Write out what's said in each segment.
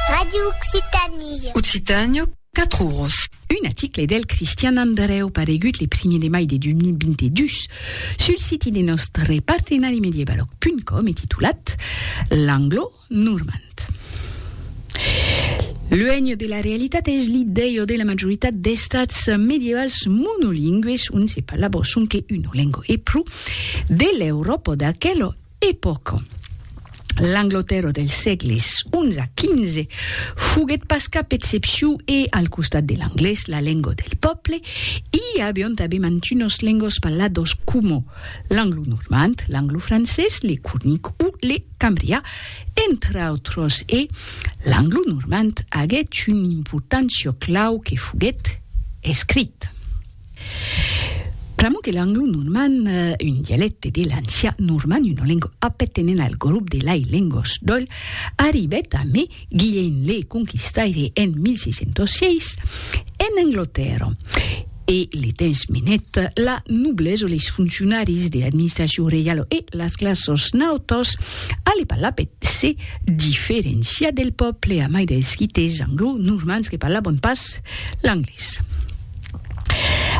Radio Occitanie. Occitània, quatre oros. Un aticle del Cristian Andrèu paregut le primier de mai de 2022 sul siti de nòstre partenari Medievaloc punt com e titulat L'anglo normand. Luènh de la realitat es l'idèia de la majoritat d'estats medievals monolingües ont se parlava sonque una lenga e pro de l'Euròpa d'aquela Epòca. L'Anglotèrra dels sègles xi a xv foguèt pas cap excepciu e, al costat de l'anglés, la lenga del pòble, i avián tanben mantunas lengas parladas coma l'anglonormand, l'anglofrancés, le cornic o le cambrià, entre autras, e l'anglonormand aguèt una importància clau que foguèt escrit. Pr'amor que l'anglo-normand, un dialècte de l'ancian normand, una lenga apertenent al grop de lai lengas d'Oll, arribèt a mai Guilhènh le Conquistaire en 1606 en Anglatèrra, e le temps menèt la noblesa, leis foncionaris de l'administracion reiala e las classas nautas a le parlar per se diferenciar del pòble, a mai dels quites anglo-normands que parlavan pas l'anglés.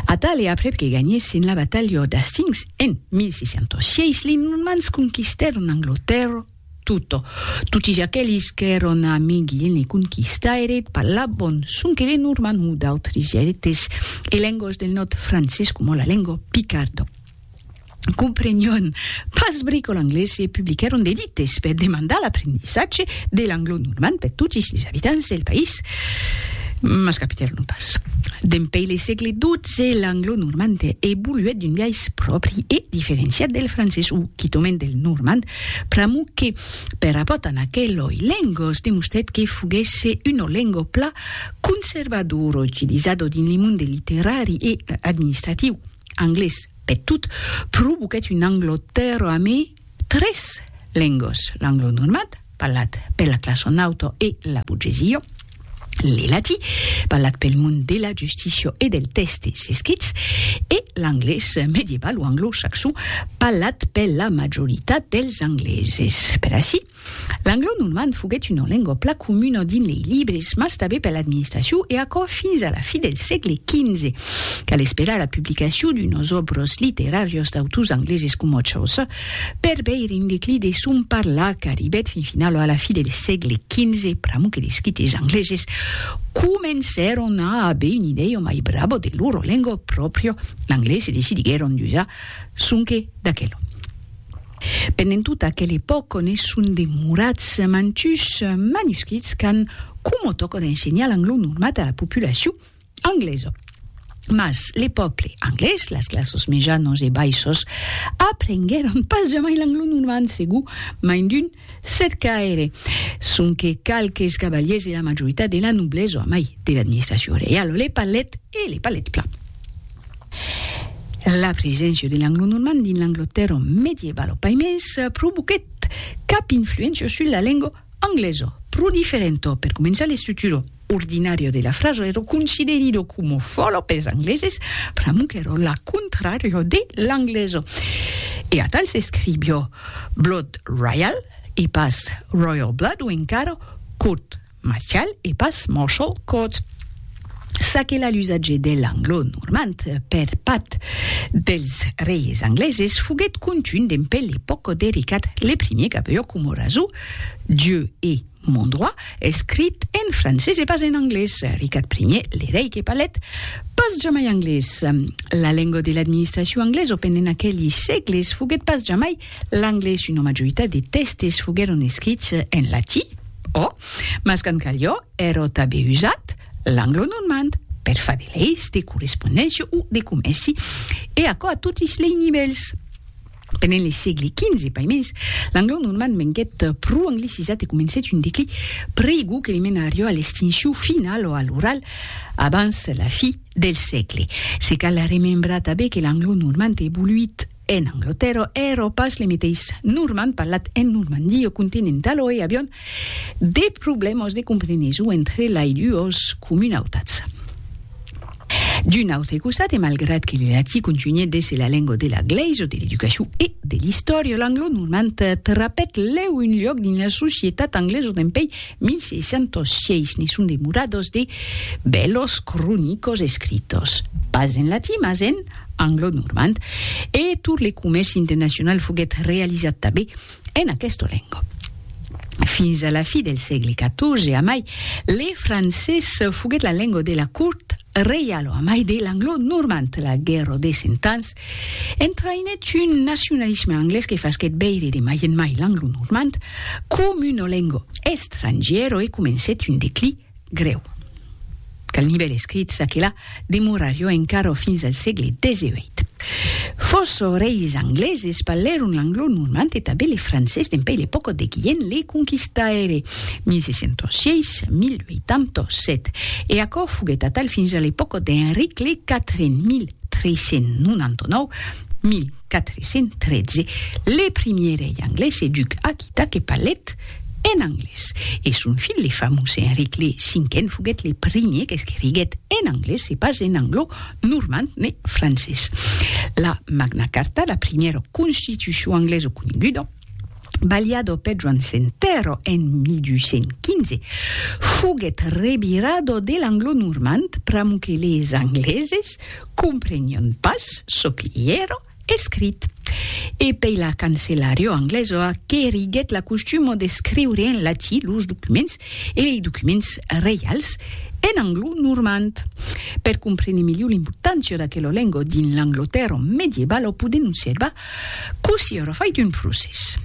Atal e aprèp que ganhèssen la batalha d'Hastings en 1606, li Normands conquistèron Anglotèrra tota. Totis aquelis qu'èron amigi en li conquistaire parlavan sonque le normand o d'autres dialectes e lengas del nòrd francés coma la lenga picarda. comprenion pas bricol anglés e publiquèron de dites per demandar l'aprendissatge de l'anglo-normand per totis les abitants del país, mas capitèron pas. Dempeis le sègle XII, l'anglo-normand evoluèt d'un biais pròpri e diferenciat del francés o quitament del normand, pr'amor que, per rapòrt amb aqueloi lengos, demostrèt que foguèsse una lenga plan conservadora utilizada dins le monde literari e administratiu. anglés peth tot, provoquèt un anglotèro a me tres lengos, l'anglo normand, parlat pela classa nauta e la burgesia, le latí, parlat pel mond de la justícia e del tèstes escrits, e l'anglés medieval o anglo-saxon, parlat pela majoritat dels angleses. Per aicí, L'anglo-normand foguèt una lengua plan comuna dins lei libres, mas tanben per l'administracion e aquò fins a la fi del sègle XV. Cal esperar la publicacion d'unas òbras literàrias d'autors angleses coma Chaucer per veire un declin de son parlar qu'arribèt fin finala a la fi del sègle XV pr'amor que d'escrites angleses comencèron a aver una idèia mai brava de lora lengua pròpria, l'anglés, e decidiguèron d'usar sonque d'aquela. Pendent tota aquela epòca ne son demorats mantuns manuscrits qu'an coma tòca d'ensenhar l'angló normat a la populacion anglesa. Mas le pòble anglés, las classes mejanas e baissas, aprenguèron pas jamai l'angló normant, segur mai d'un cercaire, sonque qualques cavaliers e la majoritat de la noblesa, mai de l'administracion reiala, le parlèt e le parlèt plan. La preséncia de l'anglo-normand dins l'Anglatèrra medievalo pas mès provoquèt cap influéncia sus la lenga anglesa, pro diferenta. Per començar, l'estructura ordinària de la frasa èra considerida coma fòla pels angleses, pr'amor qu'èra la contrària de l'anglesa. E atal s'escriviá Blood Royal e pas Royal Blood o encara Court. Mas cal e pas Marshall Court. Ça que la l'usatge de l'anglo-normand per part dels reis angleses foguèt contunh dempe l'epòca de Ricard le Primier qu'avió coma rasó Dieu est mon droit escrit en francés e pas en anglés. Ricard Primier, le rei que parlèt pas jamai anglés. La lenga de l'administracion anglesa pendent aqueli sègles foguèt pas jamai l'anglés, una majoritat de tèstes foguèron escrits en latí, O, mas qu'an calhó èrò tabé usat l'anglo-normand per far de leis de correspondéncia o de comèrci, e aquò a totis lei nivèls. Pendent le sègle XV, paimens, l'anglo-normand venguèt pro anglicisat e comencèt un declí pr'aigu que li menarió a l'extincion finala o a l'oral abans la fi del sègle. Se cal remembrar tabé que l'anglo-normand evoluit, En Anglatèrra e Euròpa, es lemeteis normand parlat en Normandie o continent d'aloi avián de problèmas de compreneson entre lai duas comunautats. D'un autre costat, e malgrat que le latí contunhèt d'èsser la lenga de la glèisa, de l'educacion e de l'istòria, l'anglo-normand trapèt lèu un luòc dins la societat anglesa dempèi 1606. Ne son demoradas de bèlas cronicas escritas, pas en latí, mas en. anglo-normand, e tot le comèrci internacional foguèt realizat tanben en aquesta lenga. Fins a la fi del sègle XIV amai, le francés foguèt la lenga de la cort reiala amai de l'anglo-normand. La Guèrra de Cent Ans entraïnèt un nacionalisme anglés que fasquèt veire de mai en mai l'anglo-normand coma una lenga estrangièra e comencèt un declí Grèu. Quel nivèl escrit çaquelà demorarió encara fins al sègle xviii. Fòça reis angleses parlèron l'anglo-normand e tanben le francés dempuèi l'epòca de Guilhèm le Conquistaire, 1606, 1087, e aquò foguèt atal fins a l'epòca d'Enric le Quatren, 1399, 1400. 413, le primier rei anglés e duc aquita que parlèt en anglés, e son filh le famós Enric le Cinquen foguèt le primier qu'escriguèt en anglés e pas en anglo, normand ne francés. La Magna Carta, la primièra constitucion anglesa coneguda, balhada peth Joan Sentèr en 1215, foguèt revirada de l'anglo-normand pr'amor que les angleses, comprenion pas çò que i èra escrit. E pei la cancelariò anglesoa qu'eriguèt la costuma d'escriure en latí los documents e lei documents reials en anglo-normand. Per comprene melhor l'importància d'aquela lenga dins l'Anglatèrra medievala podem observar Cossí aurò fait un procès.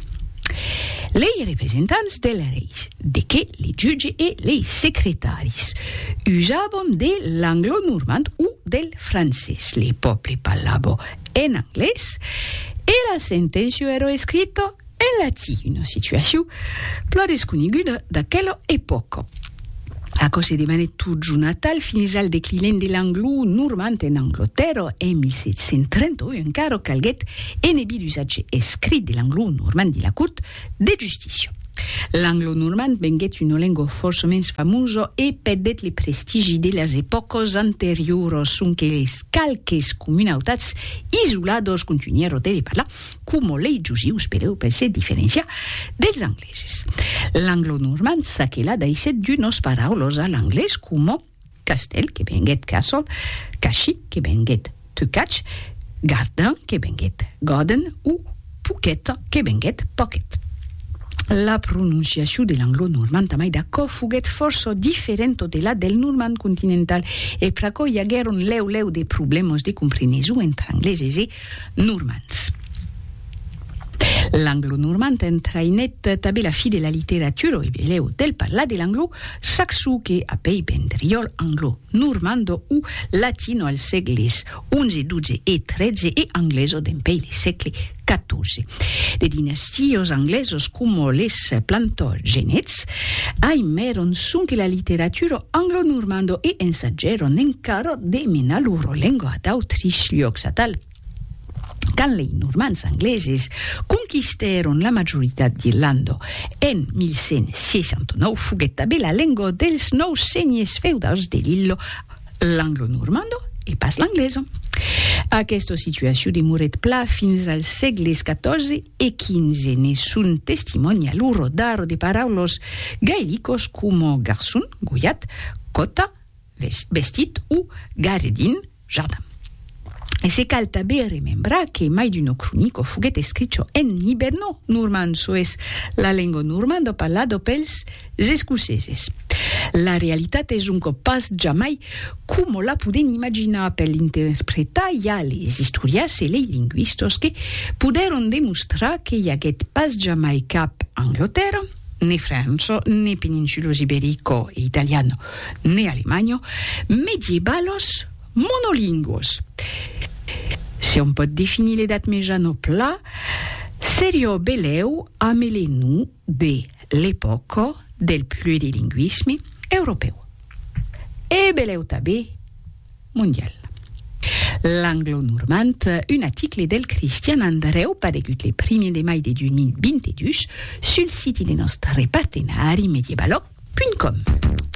Lei representants dels reis, de qué le jutge e lei secretaris, usabon de l'anglo-normand o del francés, le pòble parlabó en anglés, e la senténcia aurò escrita En latin, una situacion plan desconeguda d'aquela epòca. Aquò se demanèt totjorn atal fins al declinent de l'anglo-normand en Anglotèrra en 1731 e encara calguèt enebir l'usatge escrit de l'anglo-normand de la Cort de Justícia. L'anglo-normand venguèt una lengua fòrça mens famosa e perdèt le prestigi de las epòcas anterioras, sonque qualques comunautats isoladas contunhèron de le parlar, coma lei jusius per eupre se diferenciar dels angleses. L'anglo-normand ça que la daissèt d'unos paraulos a l'anglés coma castèl que venguèt castle, cashi que venguèt to catch, gardin que venguèt garden o poquet que venguèt pocket. La prononciacion de l'anglo-normand amai d'aquò foguèt fòrça diferenta de la del normand continental e pr'aquò i aguèron lèu lèu de problèmas de compreneson entre angleses e Normands. L'anglo-normand entraïnèt tanben la fi de la literatura e belèu del parlar de l'anglo, saxo que apèi vendriòl anglo-normando o latino al sègles xi, xii e xiii e angleso dempèi le sègle xiv. De dinastios anglesos coma les Plantagenets, Ai m'èron sonque la literaturo anglo-normando e ensagèron encara de menar loro lengua a d'autris luòcs atal. Quand lei Normands angleses conquistèron la majoritat d'Irlanda en 1169 foguèt tabé la lengua dels nòus senhers feudals de l'illa l'anglo-normando e pas l'anglesa. Aquesta situacion demorèt pla fins als sègles 14 e 15 ne son testimòni a lo rodar de paraulos gaelicos coma garçon, golhat, còta, vestit, o garedin, jardin. E se cal tanben remembrar que mai d'uno cronico foguèt escricho en hiberno-normand, çò es, la lenga normanda parlada pels Es escoceses. La realitat es un còp pas jamai coma la podèn imaginar per l'interpretar i a les istorias e lei lingüistas que podèron demostrar que i aguèt pas jamai cap Anglotèrra, ne França, ne peninsulas iberica e italiana, ne Alemanha, mediebalas monolingüas. Se òm pòt definir l'Edat Mejana pla, seriá belèu ameler-nous de l'epòca del plurilingüisme europèu e belèu tanben mondial. L'Anglo-Normand, un aticle del Cristian Andrèu paregut le primier de mai de 2022 sul siti de nòstre partenari Medievalog.com.